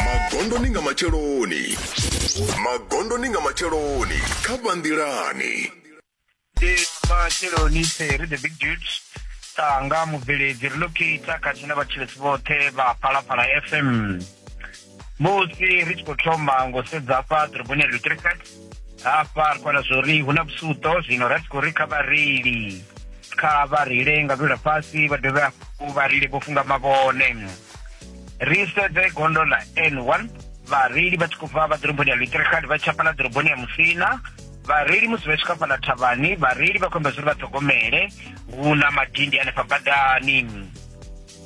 magondoni nga matsheloni magondoni nga matsheloni kha vhanḓilani ndi matsheloni ri the big dudes tanga mubveledzi ri locator khathihi na vhatshilesi vhoṱhe vha phalaphala fm musi ri tshi khou thoma ngo sedza afha ḓoroboni ya lutricet hafha ri kwana zwori hu na vhusuto zwino ra tshi khou ri kha vhareili kha vha reile nga lula fhasi vha dovhe hafhu vha reile vho funga mavhone ri sedze gondo ḽa n one vhareili vha tshi khou bva vha ḓoroboni ya luitirikali vha tshapala ḓoroboni ya musina vhareili musi vha tshi khou fhaḽa thavhani vhareili vha khou amba zwori vha ṱhogomele hu na madindi hanefha badani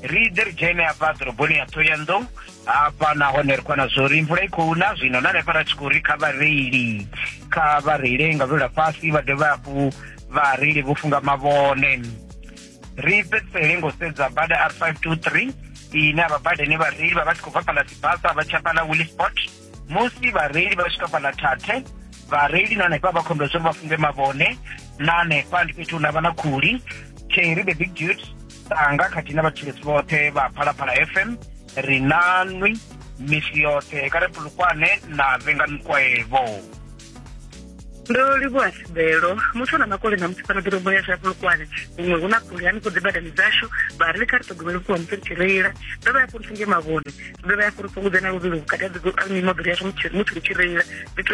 ri ḓe ri dzhene hafha ḓoroboni ya thoyandou hafha nahone ri kwana zwo ri mvula i khou na zwino na hanefha ra tshi khou ri kha vhareili kha vha reile nga lwela fhasi vha dovhe hafhu vhareili vho funga mavhone ri fhedzisele ngo sedza bada r five two three ine a vha badani vhareili vha vha tshi khou bva fhaḽa sibasa vha tsha fhaḽa willisport musi vhareili vha swika fhaḽa thathe vhareili na hanefha vha khombela zwori vha funge mavhone na hanefha ndi fhethu hune havha na khuli cherry the big dude sanga khathihi na vhatshilesi vhoṱhe vha phalaphala fm ri nanwi misi yoṱhe kha ri pulukwane na vhenganukwaevo ndo livhuwa sibelo muthu a na makole na musi fana ḓoroboni ya shafulukwane huṅwe hu na phuli hanefho dzi badani dzashu vha ri ḽi kha ri ṱhogomele vhukuma musi ri tshi reila ndo vha ya fhuri singe mavhone ndo vha ya fhuri fhungudze na luvhilo vhukati ha mimoḓoro yashu musi ri tshi reila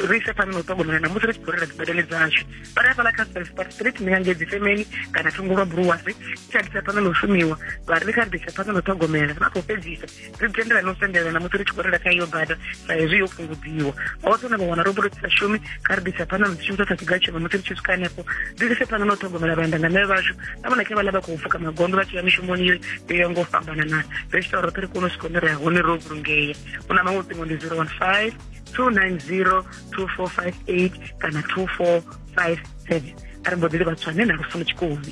ri ise phanḓa na u ṱhogomela na musi ri tshi khou reila dzi badani dzashu vha ri hafhaḽa kha spelspart street ndi ngangei dzi femeni kana thungo lwa buruwasi tshi a ḓisa phanḓa na u shumiwa vha ri ḽi kha ri ḓisa phanḓa na u ṱhogomela vha khou fhedzisa ri tendelana u sendelana musi ri tshi khou rela kha iyo bada sa hezwi yo fhungudziwa hoṱhe na vha wana ro sa shumi kha ri ḓisa phanḓa musi shumisa sa kigatshema musi ri tshi swika hanefho ri lise phanḓa na u ṱhogomela vhaendangane vhashu na vhona khe vhala vha khou pfuka magondo vha tshi ya mishumoni yo yo ya ngo fhambanana ri tshi tou roṱhe ri kone u swika hune ri ya hone ro vhulungea u na maṅwe ṱingo ndi zero one five two nine zero two four five eight kana two four five seven a ri mbo ḓi livha tswane na lufuno tshikoni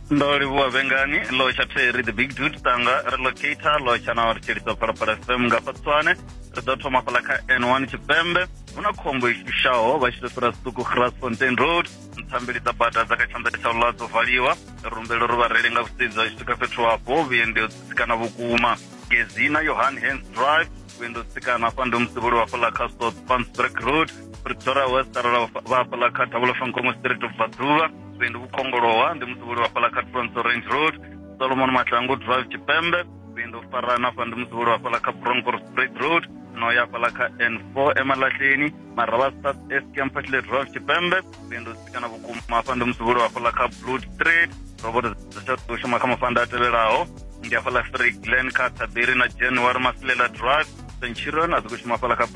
ndo livhuwa vhengani lotsha theri the big dude tanga relocator lotsha na ri tshilisa phalaphala fm nga patswane ri ḓo thoma fhala kha n1 tshipembe hu na khombo i shushaho vha tshi tou fhira siṱuku grasfontein road nthambeli dza bada dza kha tshanḓa tsha ula dzo valiwa rumbelo ri vhareili nga vhusedzi vha tshi swika fhethu hafho vhuendi ho tsitsikana vhukuma gezina yohan hans drive vhuendi ho tsitsikana hafha ndi musivholi wa fhala kha south pansburg road pretoria west arala vha- vha hafhaḽa kha thabula fankomo street of vhaḓuvha vhuendi vhu kongolowa ndi musevhuli wa hafhaḽa kha tronso range road solomon mahlangu drive tshipembe vhuendi u farana hafha ndi musevhuli wa hafhaḽa kha broncor straight road no ya hafhaḽa kha n four emalahleni maravha south east campasle drive tshipembe nṋe ndo sikana vhukuma hafha ndi musivhuli wa hafhaḽa kha blue street roboto dza tsha ḓo shuma kha mafanda a tevhelaho ndi hafhaḽa free glen kha taberi na january masilela drive centurion a dzi khou shuma hafhaḽa kha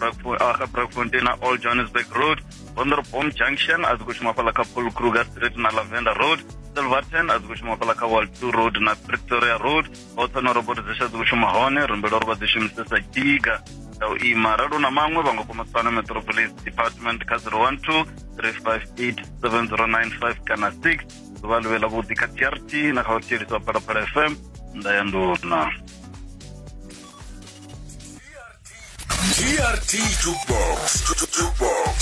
ah, brakfontein na all johannesburg road vonderbom junction a dzi khou shuma hafhaḽa kha paul kruger street na lavender road silverton a dzi khou shuma hafhaḽa kha wall two road na pretoria road vhoṱhe na roboti dzi sa dzi shuma hone ri humbela uri vha dzi shumise sa diga dza u ima ralo na maṅwe vha nga kona u tsana metropolis department kha 012 358 7095 kana 6 ḓuvha ḽi vhe ḽa vhuḓi kha trt na kha u thieliswa wa phalaphala fm nda ya nduna trt jukebox jukebox